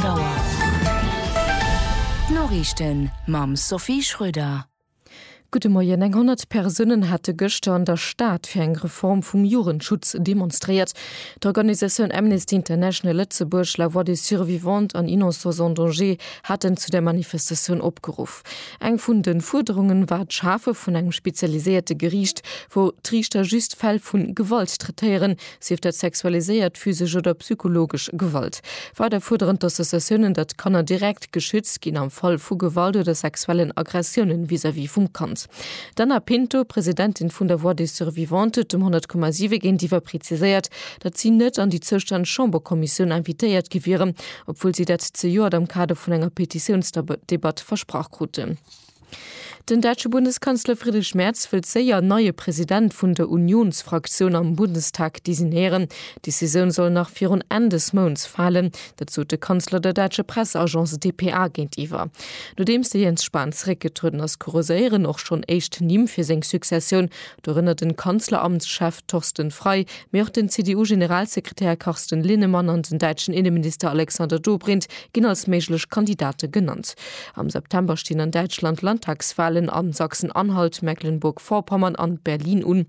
D'Auer. D'Noriichten mam Sophie Schröder. Gudde Moien. Eng 100 Persounen hate gëschter an der Stad fir eng Reform vum Jugendschutz demonstréiert. D'Organisatioun Amnesty International Lëtzebuerg, La Voix des Survivantes an Innocents en Danger haten zu der Manifestatioun opgeruff. Eng vun de Fuerderungen war d'Schafe vun engem spezialiséierte Geriicht, wou d'Riichter just Fäll vu Gewalt traitéieren, sief dat sexualiséiert, physesch oder psychologesch Gewalt. Weider fuerderen d'Associatiounen, datt d'Kanner direkt geschützt ginn am Fall vu Gewalt oder sexuellen Aggressiounen vis-à-vis vum Kand. D'Ana Pinto, Presidentin vun der Voix des Survivantes, huet dem 100,7 géintiwwer preziséiert, datt si net an déi zoustänneg Chamberkommissioun invitéiert gi wieren, obwuel si dat zejoert am Kader vun enger Petitiounsdebatt versprach kruten. Den däitsche Bundeskanzler Friedrich Merz wëllt séier neie President vun der Unionsfraktioun am Bundestag designéieren. D'Decisioun soll nach virun Enn des Mounts falen. Dat sot de Kanzler der däitscher Presseagence dpa géintiwwer. Nodeems de Jens Spahn zeréckgetrueden ass, kurséieren och schonn éischt Nimm fir seng Successioun. Dorënner den Kanzleramtschef Thorsten Frei, mee och den CDU-Generalsekretär Carsten Linnemann an den däitschen Inneminister Alexander Dobrindt ginn als méiglech Kandidate genannt. Am September stinn an Däitschland Landtagswahlen a Sachsen-Anhalt, Mecklenburg-Vorpommern an Berlin un.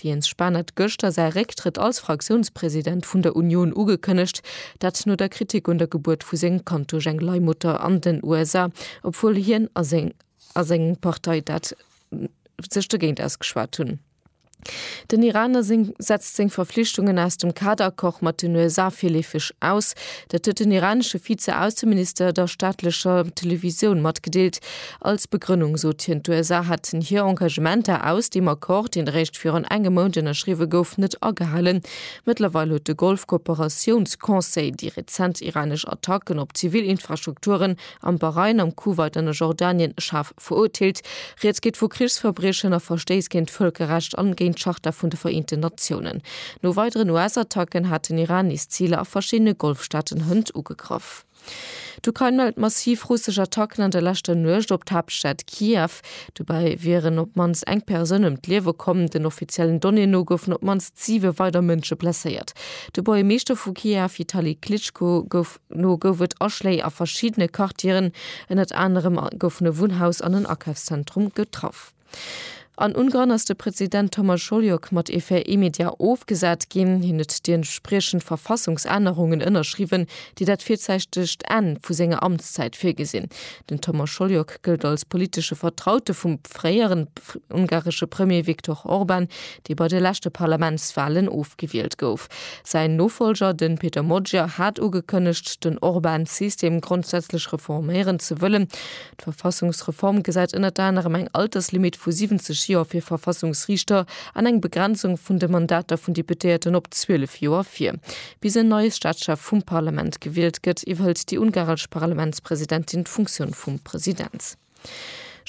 De Jens Spahn hat gëschter säi Récktrëtt als Fraktiounspresident vun der Union ugekënnegt, dat no der Kritik un der Gebuert vu sengem Kand duerch eng Leihmutter an den USA, obwuel hien a seng Partei dat sech dogéint ausgeschwat hunn. Den Iraner setzt seng Verflichtungen aus dem Kaderaccord mat den USA virleefeg aus. Dat huet den iranesche Vize-Ausseminister der staatlecher Televisioun matgedeelt. Als Begrënnung sot hien, d'USA hätten hir Engagementer aus deem Accord, deen eréischt virun engem Mount ënnerschriwwe gouf, net agehalen. Mëttlerweil huet de Golf-Kooperatiouns-Conseil déi rezent iranesch Attacken op zivil Infrastrukturen am Bahrain, am Kuwait an a Jordanien schaarf verurteelt. Rieds geet vu Krichsverbriechen a Verstéiss géint d'Vëlkerrecht an géint d'Charta vun de Vereenten Natiounen. No weideren US-Attacken hat den Iran nees Ziler a verschiddene Golfstaaten hënt ugegraff. D'Ukrain mellt massiv russesch Attacken an der leschter Nuecht op d'Haaptstad Kiew. Dobäi wieren op d'mannst eng Persoun ëm d'Liewe komm. Den offiziellen Donnéeën no goufen op d'mannst siwe weider Mënsche blesséiert. De Buergermeeschter vu Kiew Vitali Klitschko gouf. Dono gouf et Aschléi a verschiddene Quartieren, ënnert anerem goufen e Wunnhaus an en Akafszentrum getraff. An Ungarn ass de President Thomas Holyok mat Effet immédiat ofgesat ginn. Hien huet déi entspriechend Verfassungsännerungen ënnerschriwwen, déi dat virzäitegt Enn vu senger Amtszäit virgesinn. Den Thomas Holyok gëllt als politesche Vertraute vum fréieren ungaresche Premier Viktor Orban, dee bei de leschte Parlamentswalen ofgewielt gouf. Säin Nofolger, de Peter Magyar, hat ugekënnegt, den Orban-System grondsätzlech reforméieren ze wëllen. D'Verfassungsreform gesäit ënnert anerem eng Alterslimit vu 70 Joer fir Verfassungsriichter an eng Begrenzung vun de Mandater vun Deputéierten op 12 Joer vir. Bis en neie Staatschef vum Parlament gewielt gëtt, iwwerhëlt déi ungaresch Parlamentspresidentin d'Funktioun vum President.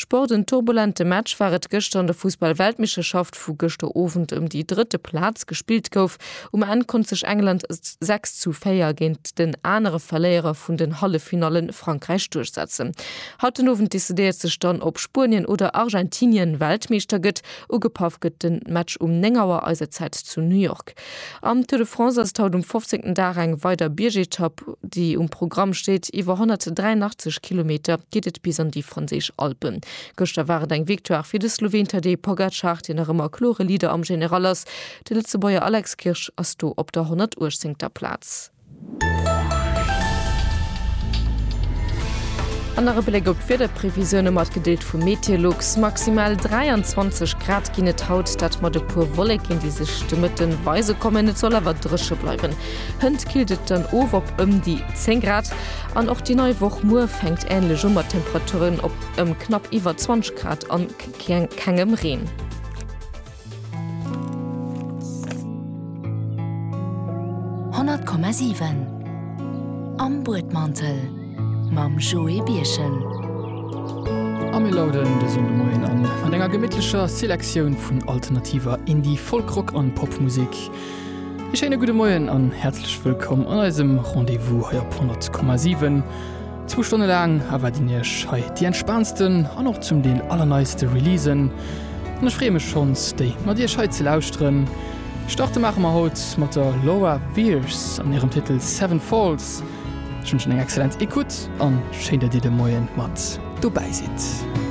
Sport, En turbulente Match war et gëschter an der Fussball-Weltmeeschterschaft, wou gëschter Owend ëm déi drëtte Plaz gespillt gouf. Um Enn konnt sech England 6 zu 4 géint den anere Verléierer vun den Halleffinalle Frankräich duerchsetzen. Haut den Owend decidéiert sech dann, ob Spuenien oder Argentinien Weltmeeschter gëtt. Ugepaff gëtt den Match um 9 Auer eiser Zäit zu New York. Am Tour de France ass et haut um 15. Dag eng weider Biergetapp, déi um Programm steet. Iwwer 183 Kilometer geet et bis an déi franséisch Alpen. Gëschter war et eng Victoire fir de Sloween Tadej Pogacar, deen nach ëmmer klore Leader am General ass. De Lëtzebuerger Alex Kirsch ass do op der 118. Plaz. An nach e Bléck op d'Wiederprevisioune mat gedeelt vum Meteolux. Maximal 23 Grad ginn et haut, dat mat e puer Wolleken, déi sech de Mëtte weise kommen. Et soll awer dréche bleiwen. Hënt killt et dann of op ëm déi 10 Grad. An och déi nei Woch muer fänkt änlech u mat Temperaturen op ëm knapp iwwer 20 Grad a kengem Reen. Honnert Komma siwen Am Buedmantel mam Joé Birchen. A mir lauden de Sonnde Moien an mat enger gemittlecher Selektioun vun alternativer Indie-, Folk-, Rock an Popmusek. E schéine gudde Moien an häerzlech wëllkomm an eisem Rendez-vous hei op 100,7. Zwou Stonne laang erwaarden iech hei déi entspaantsten an och zum Deel allerneiste Releasen an ech freeë mech schonns déi mat iech hei ze lauschteren. Starte maache mer haut mat der Laura Veirs an hirem Titel Seven Falls. Ech wënschen eng excellent Ecoute an schéin dat dir de Moien mat dobäi sidd.